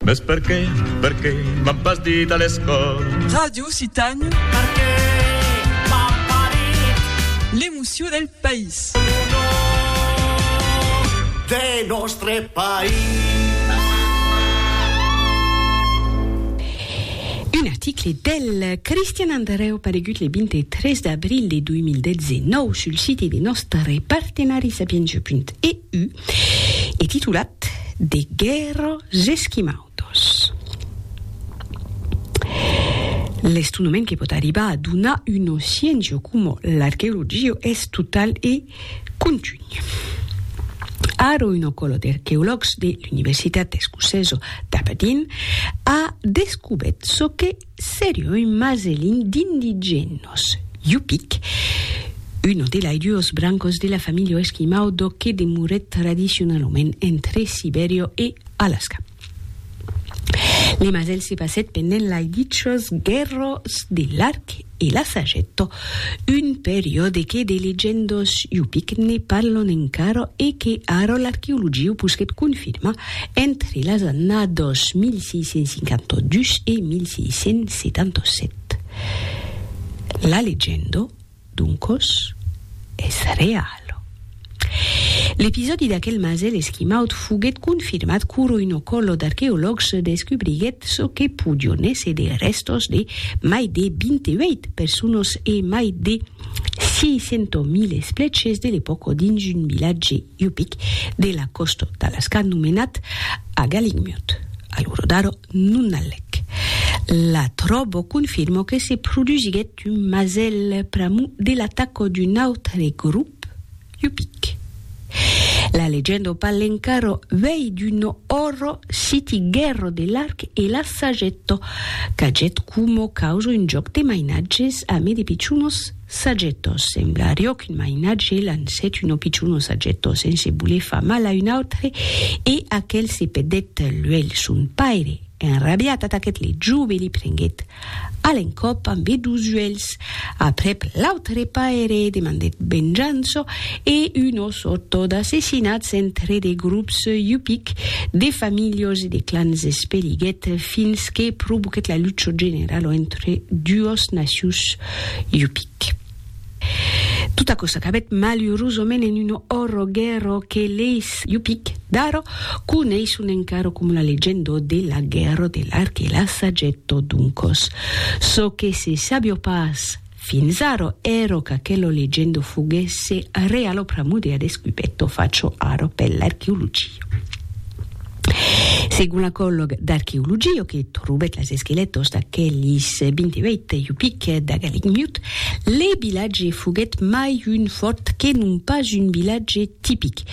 Mès perqué, perqué m'an pas dit a l'escòla. Ràdio Citània. Perqué m'an pas dit. L'emocion del país. Lo nom de nòstre país. Un article del Cristian Andrèu paregut le 23 d'abril de 2019 sul siti de nòstre partenari Sapientia.eu. e titulat De guèrra z'esquimaudos. L'estonament que pòt arribar a donar una sciéncia coma l'arqueologia es total e contun. Ara una còla d'arqueològs de l'Universitat escocesa d'Aberdeen a descobèt çò que Serio un maselin d'indigenos, Yupik, uno de lai duos brancos de la familha esquimau d'o que demorèt tradicionalament entre Sibèria e Alasca. Le masèl se passèt pendent lai dichos guèrras de l'arc e la sagetto Un periòde que de legendos yupic ne parlon encara e que ara l'arqueologia posquèt confirmar entre las annadas 1652 e 1677. La legenda, doncos, es reala. L'episòdi d'aquel masèl esquimaut foguèt confirmat quoro un ocollo d'arqueològs descubriguèt çò que podion èsser de rèstos de mai de 28 personas e mai de 600.000 esplèches de l'epòca dins un vilatge Yupik de la còsta d'Alaska nomenat Agaligmut, a l'ora d'ara. non alec. La tròbo confirmo que se produsiguèt un masèl pr'amor de l'ataca d'un autre grop, Yupic. La legenda parle encara uèi d'un òrro siti Guerro de l'Arc e la Sagetto, qu'agèt coma causa un jòc de mainatges ame de pichonos, Sajetós, sembla riò qu'un mainatge lancèt un opichon o sajetó sense voler far mal a un autre e aquel se pedèt luelh. Son paire, enrabiat, ataquèt le jove e li prenguèt a l'encòp ambé dos uelhs. Aprèp, l'autre paire demandèt venjança e un o sortó d'assassinats entre de grops yupic, de familhos e de clans espeliguèt fins que provoquèt la lucha generala entre duos nacius. Yupic. Tot aquò s'acabèt malurosament en un òrro guèrro que leis Yupic d'ara coneisson encara coma la legenda de la guèrra de l'arc e la sageta. Doncas, çò que se sabiá pas fins ara èra qu'aquela legenda foguèsse reala pr'amor de la descubèta facha ara per l'arqueologia. Segon l'acològ d'arqueologia que trobèt las esquelètos d'aquelis 28 iupic d'Agalic Miut, le vilatge foguèt mai un fòrt que non pas un vilatge tipic,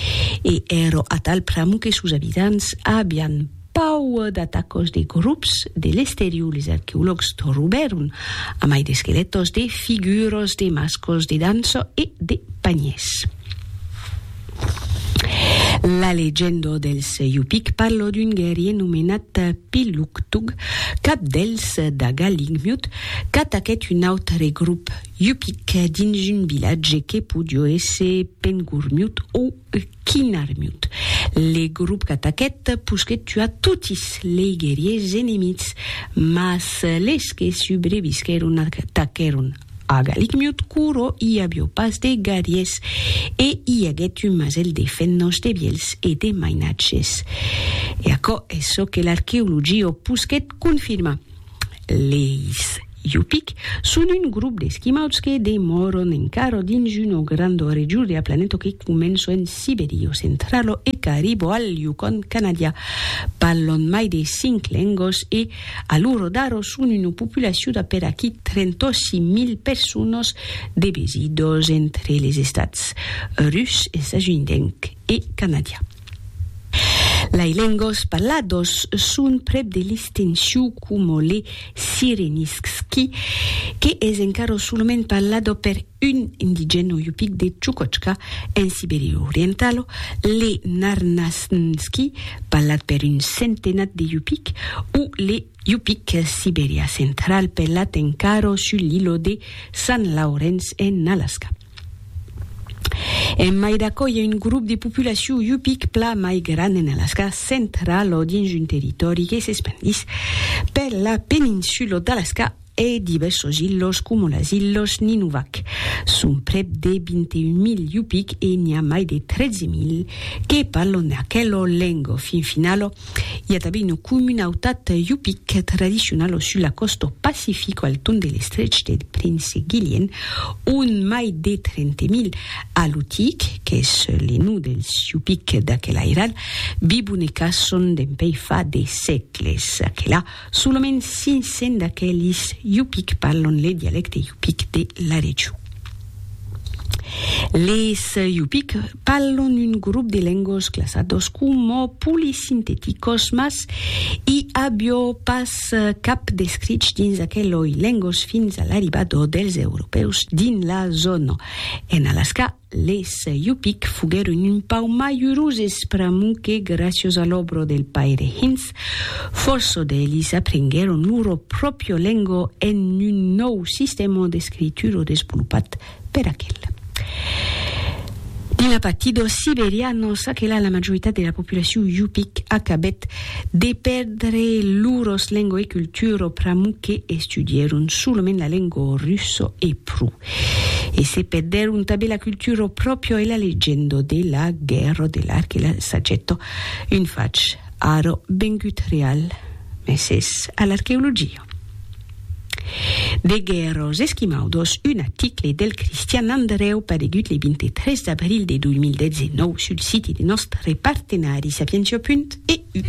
e èro atal pr'amor que sos abitants avián pau d'atacos de grops de l'exterior. Les arqueològs trobèron, a mai d'esquelètos, de figuras de mascles de dança e de panhèrs. La legenda dels Yupik parla d'un guerrier nomenat Piluktug, cap dels Daga Lingmiut, qu'ataquèt un autre grop Yupik dins un vilatge que podió èsser Pengurmiut o Kinarmiut. Le grop qu'ataquèt posquèt tuar totis lei guerriers enemics, mas les que subrevisquèron ataquèron A Galicmiut Curo i avió pas de garies e i aguèt un masèl de fenhòs de vielhs e de mainatges. E aquò es çò que l'arqueologia o posquèt confirmar. Leis Yupik son un grop d'esquimauds que demòron encara dins una granda region de la planeta que comença en Sibèria o centrala e qu'arriba al Yukon canadià. Parlan mai de cinc lengas e A l'uro d'aro son una populacion d'a per aquí 38 mil personas de besidas entre les estats rus, estasunitenc e canadià. Lai lengas parladas son prèp de l'extencion coma le sirenistski, que es encara solament parlada per. Un indigeno yupik de Tchoukochka, en Sibèria orientalo, le Narnasnski, parlat per un centenat de yupik, o le yupik siberià central parlat encara sus l'ilò de Sant Laurenç en Alasca. En mai d'aquò, i a un grop de populacion yupik plan mai grand en Alasca central o dins un territòri que s'espandís per la peninsula d'Alasca, E divèrsos ilhòs coma las ilhòs Nunivak. Son prèp de 21.000 Yupik e n'i a mai de 13.000 que parlon aquela lenga. Fin finala, i a tanben una comunautat Yupik tradicionala sus la còsta pacifica al torn de l'estrech del Prince Gillian, ont mai de 30.000 Alutiik, qu'es le nom dels Yupik d'aquel airal, vivon e caçon dempuèi fa de sègles. Aquela Solament 500 d'aquelis yupik parlon le dialècte yupik de la region. Les yupik parlon un grop de lengos classados coma polisinteticos mas i a biò pas cap descrich dins aqueloi lengos fins a l'arribado dels europèus dins la zòna. En Alaska, Les Yupik foguèron un pauc mai uroses pr'amor que, gràcios a l'òbro del paire Hintz, fòrça d'elis aprenguèron loro pròpria lenga en un nòu sistèma d'escritura desvolopat per aquel. Dins la partida siberiana, ça que la majoritat de la populacion Yupik acabèt de pèrdre loras lenga e cultura pr'amor que estudièron solament la lenga russa e pro. e se perdèron tanben la cultura, o pròpio e la legenda de la guèrra de l'arc e la sageta, un fach ara vengut real, mès es a l'arqueologia. De guèrras esquimaudas, un aticle del Cristian Andrèu paregut le 23 d'abril de 2019 sul siti de nòstre partenari Sapientia. EU.